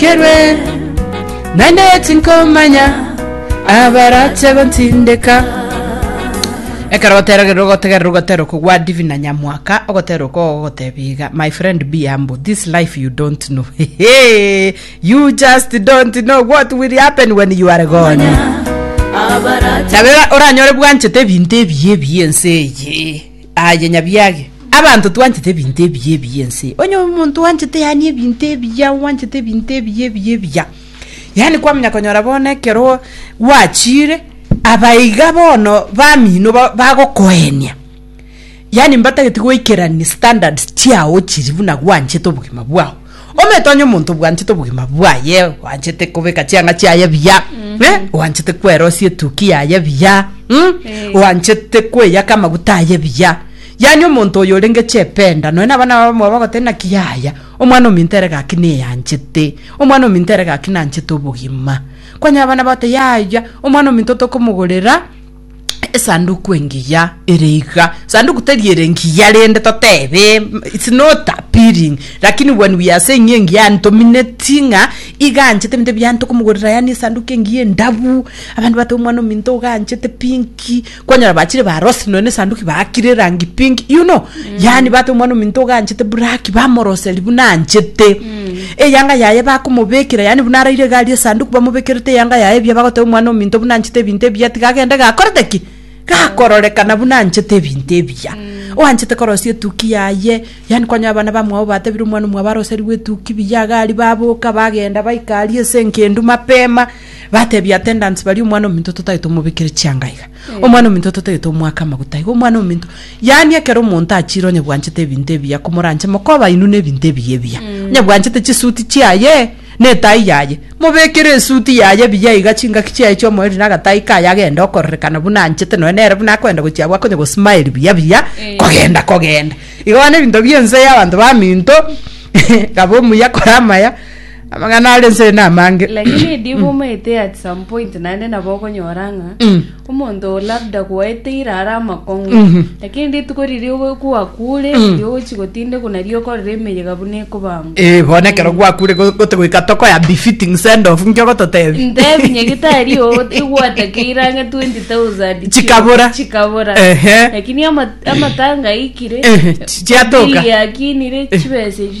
Ntinyorokerwe, naende tinkomanya abarache gontindeka. Ekero oteregerwe ogotegerera ogoteera okogwa divi na nyamwaka ogoteera oko ogogotebia iga my friend be humble this life you don't know Hehe, you just don't know what will happen when you are gone abarache Tabera oranyore bwanchete ebinto ebiya ebiya ense eye Aye nyabiage, abanto twanchete ebinto ebiya ebiya ense. Onye omonto wanchete yani ebinto ebiya, wanchete ebinto ebiya ebiya ebiya. Yani kwamenya konyora bono ekero gwachire abaiga bono bamino ba- bagokoenia. Yani mbatageti goikerani standards chiao chiri buna gwanchete obogima bwao. Omanyete onye omonto obwanchete obogima bwaye, oanchete kobeka chianga chiaye buya, eh, oanchete kwerosia etuki yaye buya, mm, Eh. oanchete kweyaka amaguta aye buya. Yaani omonto oyo orenge chependa, nonya na abana babo mwaba bagoteba naki yaya, omwana ominto ere gaki neyanchete, omwana ominto ere gaki nanchete obogima. Kwanyora abana bagote yaya, omwana ominto tokomogorera. esanduku engiya ere iga sanduku teri ere ngiya rende totebe mm, it's not appealing lakini when we are saying engiya yani tomineti ng'a iganchete ebinto ebiya ntokomogorera yani esanduku engiya endabu abande bate omwana ominto oganchete pinki kwanyora bachire ba rosi nonya na esanduki baakire erangi pinki you know yani bate omwana ominto oganchete buraki bamoroseri buna anchete Eyanga yaye bakomobekera, yaani buna araire egari esanduku bamobekerete eyanga yaye ebuya bagoteba omwana ominto buna anchete ebinto ebiya tiga agende gakorete ki? Gakororekana buna anchete ebinto ebiya. Oanchete korosia etuki yaye, yaani kwanyora abana bamwabo batebire omwana omwabo aroserigwe etuki buya, egari baboka bagenda baika aria ase engendu mapema, Batebia attendants baria omwana ominto totagete omobekere chianga iga. Omwana ominto totagete omwake amaguta iga. Omwana ominto yaani ekero omonto achire onye bwanchete ebinto ebiya komoranche mokobainwe na ebinto ebiya ebiya. Onye bwanchete chisuit chiaye na etai yaye mobekere esuit yaye buya iga chingaki chiaye chia omoerio na agatai kaye agende okorerekana buna anchete nonya nere buna akoenda gochia abwo akonye go smile buya buya kogenda kogenda. Igo bono ebinto bia ense ya abanto baminto kaba omuya kora amaya. Amang'ana are nse namange. Lakini edibu omaete at some point naende nabo okonyora ng'a Mm. omonto oo labda kwaeteire are amakong'u Mhm. lakini rituko riria ogo- kwakure riria ogochi gotindekwa nario okorora emeyega buna ekobangwa Eh, bono ekero gwakure go- gote goika tokoya befitting send off nkio gototebi. ntebi nyagitari oo igwatakeire ang'e 20000 Chikabura. chikabura Ehe. lakini ama- amatanga aikire Ehe, chi- chiatoka. bili yakinire chibesa echi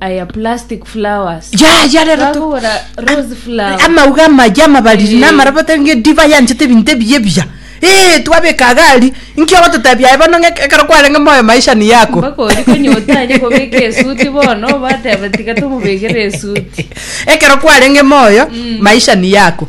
Aya plastic flowers. ya ya rero tu- Bagora rose flower. amauga amaya amabariri Eh. namarabata nge diva yanchete ebinto ebiya ebiya ee twabeka agari nki ogototebia aye bono ng'e- ekero kwarenge moyo maisha ni yako Mpaka ori konye otanye kobeka esuti bono bateba tiga tomobekere esuti. ekero kwarenge moyo maisha ni yako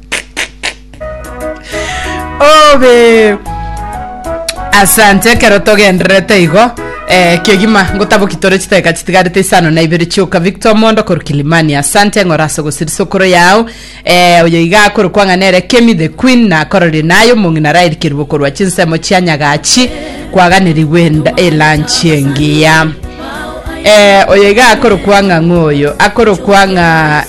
Obe. Asante ekero togendererete igo eh, kegima ngotaboki tore chiteka chitigarete isano na ibere chioka victor mondo koru kilimani asante ng'ora ase ogosirisa okoro yao eh, oyo iga akoru kwang'ana ere kemi the queen na akororire naye omong'ina rairikerigwe korwa chinsemo chia nyagachi kwaganirigwe enda- elanchi engiya eh, oyo iga akoru kwang'a ng'oyo akoru kwang'a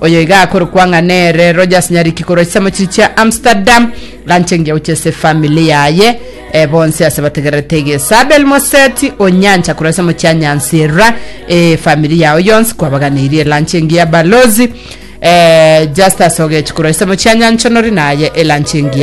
Oyo iga akorokwa ng'a nere Rogers Nyariki korwa chisemo chiria chia Amsterdam, ranche ngiya gochia ase efamili yaye eh, bonsi ase bategererete egesa. Abel Moseti o Nyancha korwa chisemo chia Nyansira, efamili yao yonsi kwabaganeirie eranche engiya. Balozi eh, Justus Ogechi korwa chisemo chia Nyanchonori naye eranche engiya.